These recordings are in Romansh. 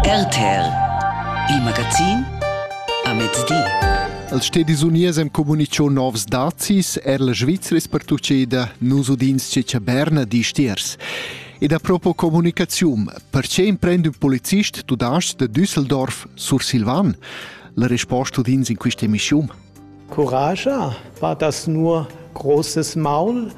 RTL Il magazin a mezdi. Els stedis uniers hem comunicho novs dazis, er la Svizra es pertucceda, nus udins cecha Berna di stiers. Ed a propo comunicazium, perché imprend un policist tu das de Düsseldorf sur Silvan? La risposta udins in questa emissium. Curascha fa das nur großes Maul,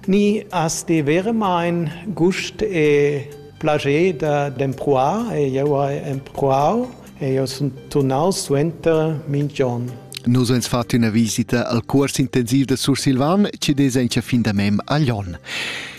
ni has ti veramein gust e plascher da d'empruar? Jeu hai empruau e jeu sun turnaus suenter mintg'onn. Nus ans fat üna visita al cuors intensiv da Sursilvan chi'd es aint fin da mem a Lon.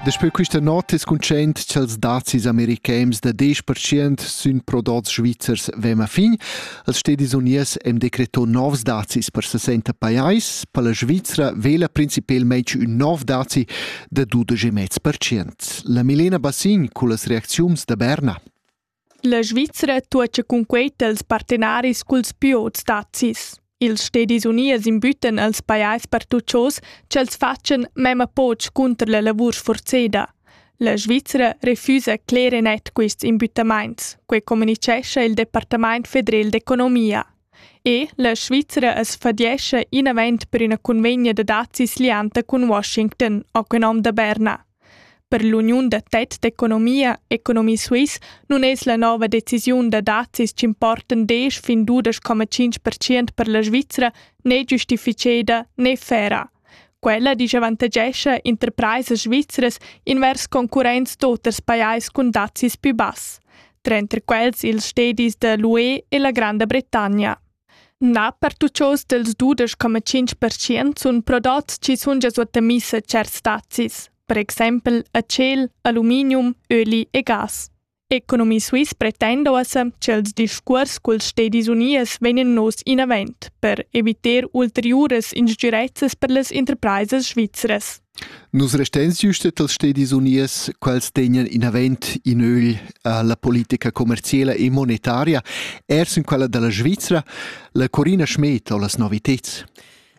Daspö quista not es cuntschaint cha'ls dazis americans da 10% sün prodots svizzers vema fin. Els stedis uniers hem decreto novs dazis per 60 pajais. Per la Svizra vela principelmaing ün nov dazi da 12,5%. La Milena Bassin culla reacziuns da Berna. La Svizra tuocha cunquei tals partenaris culs plü ots dazis. Ils Stedis Unies imbüttan als pajais pertuchos ch'els fatschan memma poch cunter la lavur sforzeda. La Svizra refusa cler e net quists imbüttamaints, quei comunichescha il Departamaint federel d'economia. E la Svizra as fadiescha inavant per üna convegna da dazis lianta cun Washington, ho quel nom da Berna. Per l'uniun da tet d'economia Economy Suisse nun es la nouva decisiun da dazis ch'importan desch fin dudesch coma tschinch pertschient per la Svizra ne giustificheda ne fera. Quella disavantagescha interpraisas svizras invers concurrents d'oters pajais cun dazis pü bass, tranter quels ils stedis da l'UE e la Granda Bretagna. Na, per tuts oz dals dudesch coma tschinch pertschient sun prodots chi sun gia suottomiss a tscherts spazis, per exaimpel a tschel, aluminium, öli e gas. Economy Suisse pretenda uossa cha ils discuors culs stedis uniers vegnan nos inavant per eviter ulteriuras instgirezzas per las interpraisas svizras. Nus restein süst dals stedis uniers, quels tegnan inavant in ögl a la politica commerciela e monetaria, er sin quella da la Svizra, la Corina Schmed ho las noviteds.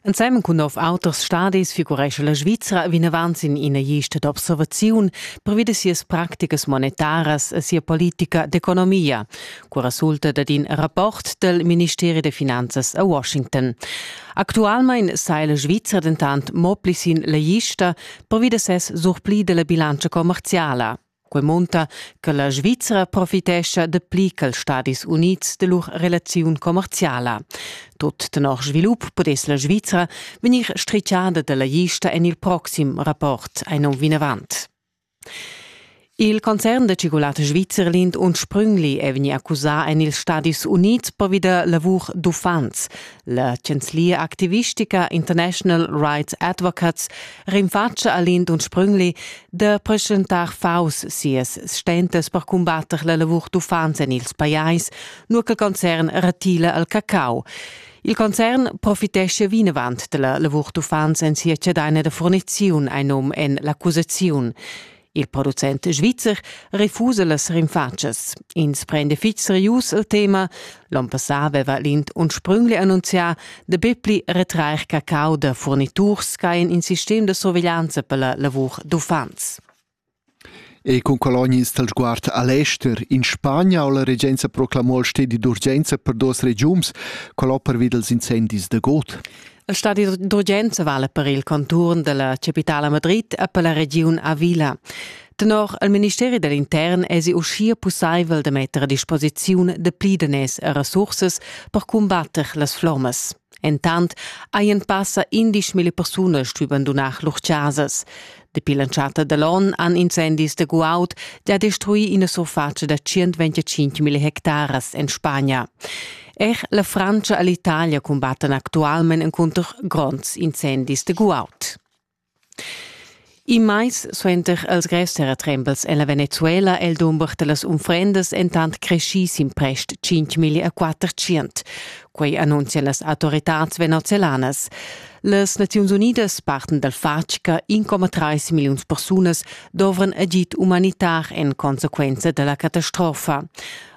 Ensemen cun nov auters stadis figurescha la Svizra vinavant sin ina gista d'observaziun previd sias practicas monetaras e sia politica d'economia, cu resulta dad in rapport del Ministeri de Finanzas a Washington. Actualmein sa la Svizra dentant mo pli sin la lista pervi da ses surpli della bilantscha commerciala. Quei munta che la Svizra profitescha de pli che Stadis Unids de lur relaziun commerciala. Tot tenor svilup pudess la Svizra vegnir stricciada della lista en il proxim rapport ein on vinavant. Il concern da tschigulata svizzer Lind und Sprüngli è vegnì accusà en ils Stadis Unids pervi da lavur d'uffants. La chanzlia activistica International Rights Advocates rinfatscha a Lind und Sprüngli da preschentar faus sias stentas per cumbatter la lavur d'uffants en ils pajais, nur che il concern retila al cacau. Il concern profitescha vinavant della lavur d'uffants en sia cedaina da furniziun ein num en l'accusaziun. Il producent svizzer refusa las rinfatschas. Ins prende fitg serius il tema. L'on passà aveva l'Int unsprüngli annunzià da bepli retrair cacau da furniturs che ein in sistem da surveglianza per la lavur d'uffants. Ei cun colonias dal sguard a l'ester in Spagna ho la regenza proclamò il stedi d'urgenza per duos regiums quel ho pervi dals incendis da god. Il stadi d'urgenza vala per il conturn dalla capitala Madrid e per la regiun Avila. Tenor il ministeri dell'intern esi uschia pussaivel da metter a disposiziun de pli daners e resursas per combatter las flommas. Entant hajan passa indesch mille persunas stuì bandunar lur chasas. Dapi l'entschatta da l'onn han incendis da guaud già destruì ina surfatscha da 125 mille hectaras en Spagna. Er la Francia e l'Italia cumbattan actualment encunter gronds incendis de guaud. In mais suenter els grevs terratrembels en la Venezuela è il dumber da las unfrendas entant creschì sin prest tschintg e quattertschient. Quei annunzian las autoritads venezolanas. Las Naziuns Unidas parten dal fatg che 1,3 milliuns persunas dovran agid umanitar en consequenza da la catastrofa.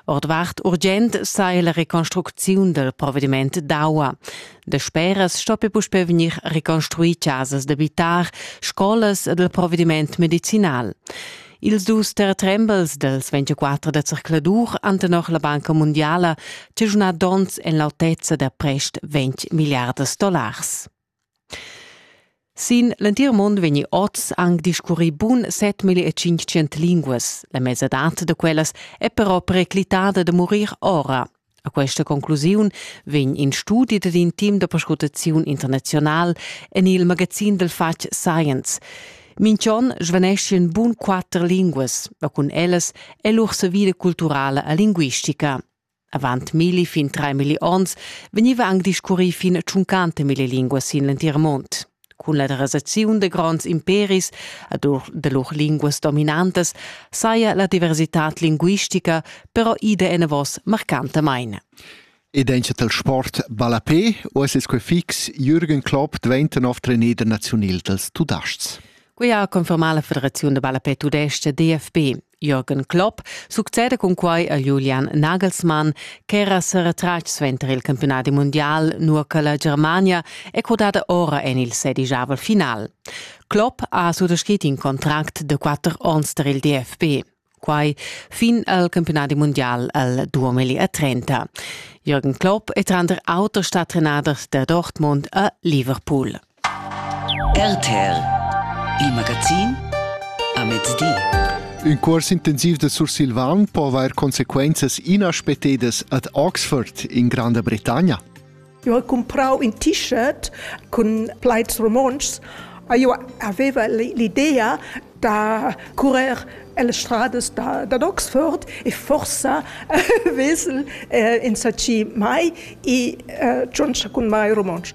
Ordvart urgent saja la reconstrucziun dal provediment d'aua. Dasperas stoppi puspè vegnir reconstruì chasas d'abitar, scolas ed il provediment medicinal. Ils dus terretrembels dels 24 da circladur han tenor la Banca Mundiala chaschunà donns en l'autezza da prest 20 miliards dollars. Sin l'entir mund vegni oz anc discurrì bun 7500 linguas. La mesadad da quellas è però periclitada da murir ora. A questa conclusiun vegn in studi dad in team da perscrutaziun internazional en il magazin del fatg Science. Minchon svaneschien bun quatter linguas, ma cun ellas è lur savida culturala e linguistica. Avant milli fin trai milli onns vegniva anc discurrì fin a tschuncante mille linguas sin l'entir mund. Cun la derasaziun de gronds imperis ad ur de lur linguas dominantas saja la diversitad linguistica però ida enavos marcantamain. Ed encha tal sport ballapé o es quei fix Jürgen Klopp diventa nov trener nazional dals Tudasts? Quia ha confermà la Federaziun da ballapé tudescha DFB. Jürgen Klopp succeda cun quai a Julian Nagelsmann ch'era sa retratg suenter il campiunadi mundial nua che la Germania è codada ora en il sedigiavel final. Klopp ha suttascrit in contract de quatter onns per il DFB. Quai fin al campiunadi mundial al 2030. Jürgen Klopp è tranter auter stat trenader da Dortmund a Liverpool. RTL Il magazin a mezdi. Ün cuors intensiv da sursilvan po avair consequenzas inaspetedas ad Oxford in Granda Bretagna. Eu ho cumprau ün t-shirt cun plaids romontschs e io aveva l'idea da currer las strades da, da Oxford e forsa vesel eh, insatgi mai e eh, giundscha cun mai romontsch.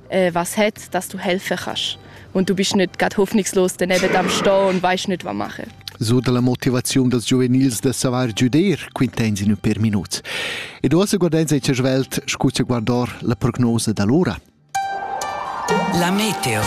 äh, was het, dass du helfen kannst. Und du bist nicht gerade hoffnungslos daneben am Stehen und weißt nicht, was machen. So dalla motivaziun dels giuvenils da savar giuder quintensin per minuts. Ed uossa guardenza e svelt scusa guardar la prognosa d'allora. La meteo.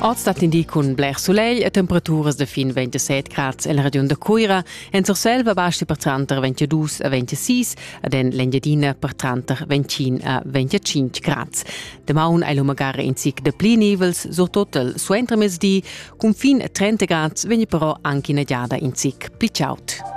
Oz dat in di cun bler sulegl e temperaturas de fin 27 grad el regiun de Cuira, en Surselva basti per tranter 22 e 26, ad en l'Engiadina per tranter 25 a 25 grads. Damaun ei lu magari in zic de pli nivels, surtot il suentermezdi. Cun fin 30 grads vegni però anche ina giada in zic pli chaud.